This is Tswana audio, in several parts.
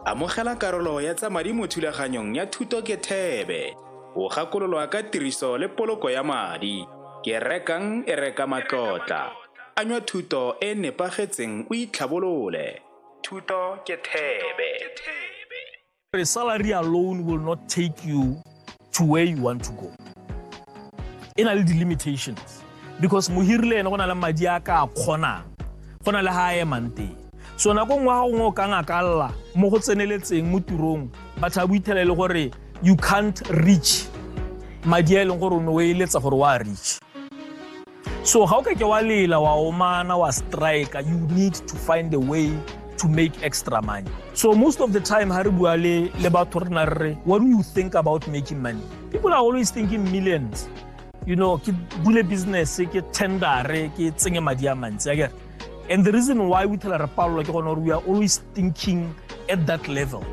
Amogela karolo ya tsa madi mo thulaganyong ya Thuto ke Thebe. O gakololwa ka tiriso le poloko ya madi. Ke rekang e reka matlotla. Anywa thuto e nepagetseng o itlhabolole. Thuto ke Thebe. A salary alone will not take you to where you want to go. E na le di-limitations because mohiri le ene go na le madi a ka a kgonang go na le ga a emang teng so nako nngwe ga gongwe o ka ngakalla mo go tseneletseng mo tirong batho ba boithela e le gore you can't reach madi a e leng gore o ne o eletsa gore wa reach so ga o ka ke wa lela wa omana wa strike you need to find a way to make extra money so most of the time ha re bua le le batho rena re what do you think about making money people are always thinking millions you know ke bule business ke tendere ke tsenye madi a mantsi akere and the reason why we tell re palelwa ke gone gore we are always thinking at that level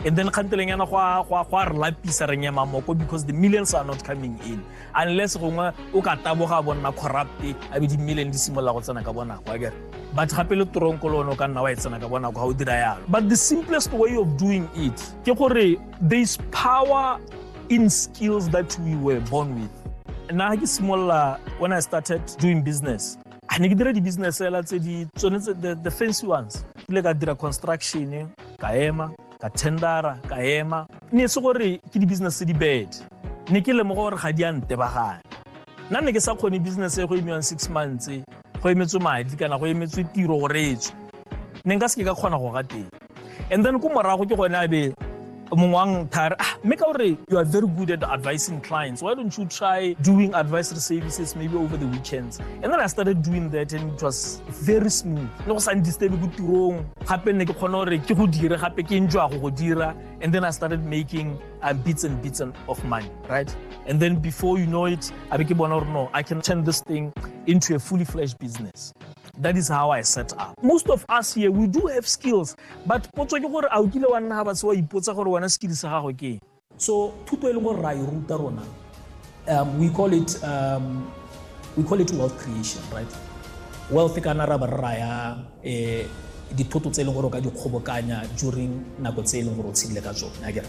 and then kganteleng yana go a re lapisa re nyema moko because the millions are not coming in unless gongwe o ka taboga a bonna corrupt a be dimmeleng di simolola go tsena ka bonako a kere but gape le toronko le one o ka nna wa e tsena ka bonako ga o dira yalo but the simplest way of doing it ke gore there is power in skills that we were born with nna ga ke simolola when i started doing business a ne ke dira di-business fela tse di tsone the fancy ones kile ka dira construction ka ema ka tendera ka ema ne se gore ke di-business tse di bad ne ke lemoga gore ga di a ntebagana nna ne ke sa kgone business e go emiwang six months go emetswe madi kana go emetswe tiro gore e tswe ne nka se ke ka kgona go ga teng and then ko morago ke gone a be mongwe wa nthare ah mme ka gore you are very good at advising clients why don't you try doing advisory services maybe over the weekends and then i started doing that and it was very smooth le go sa ndistebe ko tirong gape nne ke kgone gore ke go dire gape ke enjoy go go dira and then i started making um, bits and bits of money right and then before you know it a be ke bona gore no i can turn this thing into a fully fledged business that is how i set up most of us here we do have skills but potso ke gore a o kile wa nna ga batse wa ipotsa gore wena skill sa gago ke So thuto e leng gore ra e ruta rona um, we call it um, we call it wealth creation right wealth kana ra ba re raya eh, dithoto tse e leng gore o ka di kgobokanya during nako tse e leng gore o tshedile ka tsone akere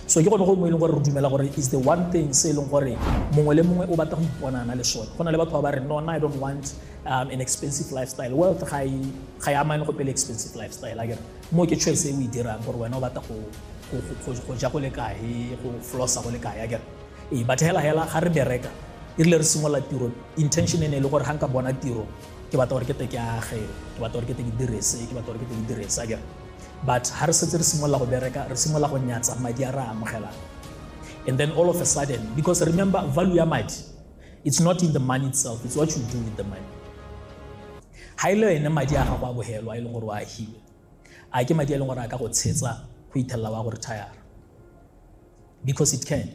so ke gone go mo e leng gore re dumela gore is the one thing se e leng gore mongwe le mongwe o batla go iponana le sone go na le batho ba ba re nona i don't want um, an expensive lifestyle wealth ga e amane go pele expensive lifestyle akere mo ke choice e o e dirang gore wena o batla go ja go le kae go flossa go le kae akere ee but hela hela ga re bereka e rile re simolola tiro intention e ne e le gore ga nka bona tiro ke batla gore ke te ke age ke batla gore ke te ke direse ke batla gore ke te ke direse akere but ga re setse re simolola go bereka re simolola go nyatsa madi a re a amogelang and then all of a sudden because remember value ya madi it's not in the money itself it's what you do with the money Ga e le ene madi a gago a bogelo a e leng gore o a agile a ke madi a e leng gore a ka go tshetsa go ithelela wa go retire because it can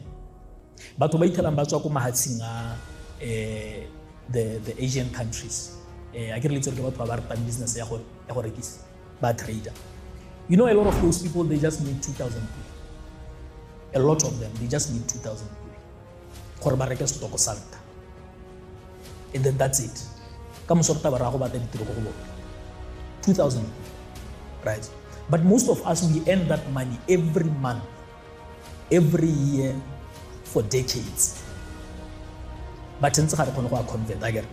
batho ba ithelang ba tswa ko mahatshing a um the the asian countries um a ke re le ke batho ba ba ratang business ya go ya go rekisa ba trader you know a lot of those people they just need 2000 a lot of them they just need 2000 gore ba reke setoko sa nka and then that's it ka moso re taba ra go batla ditiro ko go bone 2000 right but most of us we earn that money every month every year for decades but ntse ga re kgone go a convert a kere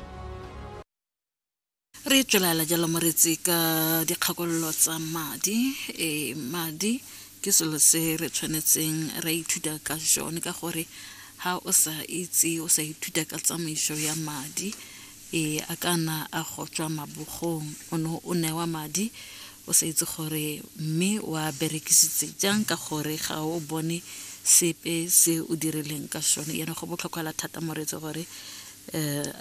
re tswelela jalo moretsi ka dikgakololo tsa madi e madi ke selo se re tshwanetseng ra ithuta ka jone ka gore ha o sa itse o sa ithuta ka tsamaiso ya madi e a kana a go tswa mabogong o ne o newa madi o sa itse gore mme wa berekisitse jang ka gore ga o bone sepe se o dirileng ka sone yana go botlhokwa la thata moreetsi gore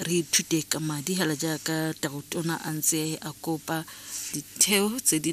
Re ithute ka madi hela jaaka Tautona a ntse a kopa ditheo tse di